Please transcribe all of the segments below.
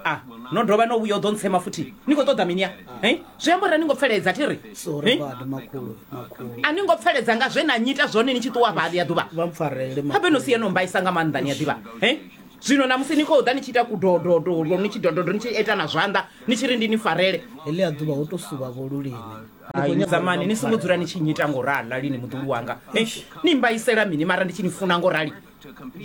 Ah, no dovha no vhuya u ḓo ntsema futhi ni khou ṱoḓa mini ya Eh? zwi amba uri a ni ngo pfeledza thi ri sori Eh? badi makhulu makhulu a ni ngo pfeledza nga zwe na nyita zwone ni tshi ṱuwa vha ḽi ya ḓuvha vha mpfarele makhulu. habe no si yeno mbaisa nga maanḓa ni a ḓivha Eh? zwino namusi ni khou ḓa ni tshi ita kudododo ni tshi dododo ni tshi ita na zwanḓa ni tshi ri ndi ni farele heḽi a ḓuvha ho to suvha vho lulimi Ai, zamani ni songo dzula ni tshi nyita ngorali lini muḓulu wanga Eh, ni mbaisela mini mara ndi tshi ni funa ngorali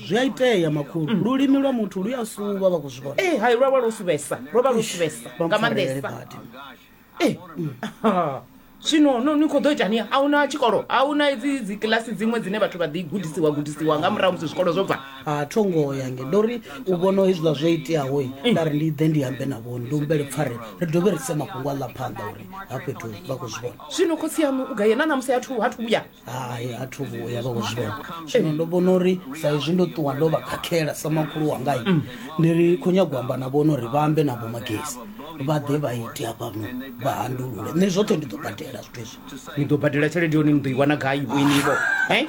zwi a itea makhulu mm. lulimi lwa muthu lu ya suvha vha khou zwi vhona eh, hai lwa vha lwo suvhesa lwo vha lwo suvhesa nga maanḓesa eh, mm. zwino no ni khou ḓo itani a huna tshikolo a huna dzi dzi kilasi dziṅwe dzine vhathu vha ḓi gudisiwa gudisiwa nga murahu musi zwikolo zwo bva a tho ngo ya nge ndo ri u vhona hezwiḽa zwo iteaho mm. nda ri ndi ḓe ndi ambe na vhoni ndi humbele pfare ri dovhe ri se mafhungo a ḽa phanḓa uri ha fhethu vha khou zwi vhona zwino khotsi yanu u gaye na namusi hathu hathu vhuya hai a thu vhuya vha kuzwivhona zwino ndo vhona uri sa izwi ndo ṱuwa ndo vha khakhela sa makhulu wangai mm. ndi ri khou nyago amba na vhona uri vha ambe na vhomagesi vha ḓe vha ite hafha vha handulule nṋe zwoṱhe ndi ḓo badela zwithu izwi ni ḓo badela tshelede yone ni ḓo i wana gai vhoinivo eh?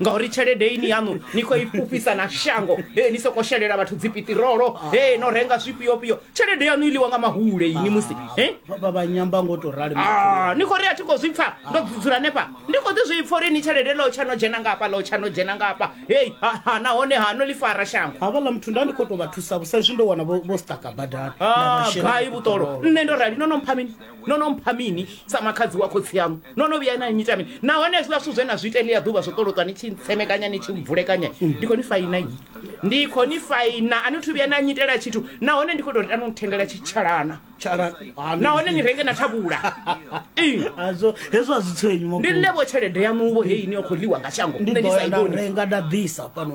ngauri tshelede ini yaṋu ni khou i fhufhisa na shango e ni soko shelela vhathu dzipitirolo e no renga zwifhiofhio tshelede yanu i ḽiwa nga mahule ini musi eh? vha vha nyamba ngo to rali Ah, ni khou ri a thi khou zwi pfa ndo dzula nefha ndi khou ḓi zwi pfa uri ni tshelede ḽo tsha no dzhena ngafha ḽo tsha no dzhena ngafha hei ha, ha, nahone ha no ḽi fara shango havhaḽa muthu nda ndi khou tou vha thusa vho sa izwi ndo wana vho vho staka badani Na Ah, vhashela gai vhuṱolo nṋe ndo rali no no mpha mini no no mpha mini sa makhadzi wa khotsi yaṋu no no vhuya na nyita mini nahone hezwiḽa zwithu zwe na zwi ita ḽia ḓuvha zwo ṱoloṱwa ni tshi ntsemekanya ni tshi mvulekanya ndi khou ni faina yi ndi khou ni faina a ni thu vhuya na nyitela tshithu nahone ndi khou tou ri tano nithengela tshitshalana nahone ni renge na thavhula hazwo hezwo a zwi tswenyu ndi nṋe vho tshelede yaṋuvho heyi ni yo khou ḽiwa nga shango nṋe ni sa i vhoni renga nda ḓisa fhano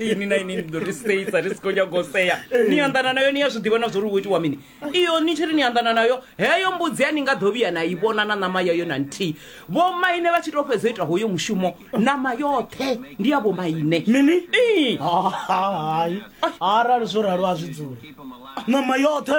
ini na ini ndi ḓo ri seisa ri si khou nyanga u sea ni anḓana nayo ni ya zwi ḓivha na zwo ri wo itiwa mini iyo ni tshi ri ni anḓana nayo heyo mbudzi ya ni nga ḓo vhuya na i vhona na ṋama yayo na nthihi vhomaine vha tshi tou fhedza u ita hoyo mushumo ṋama yoṱhe ndi ya vhomaine mini Ii. Ha, ha, hai arali zwo ralo a zwi dzule ṋama yoṱhe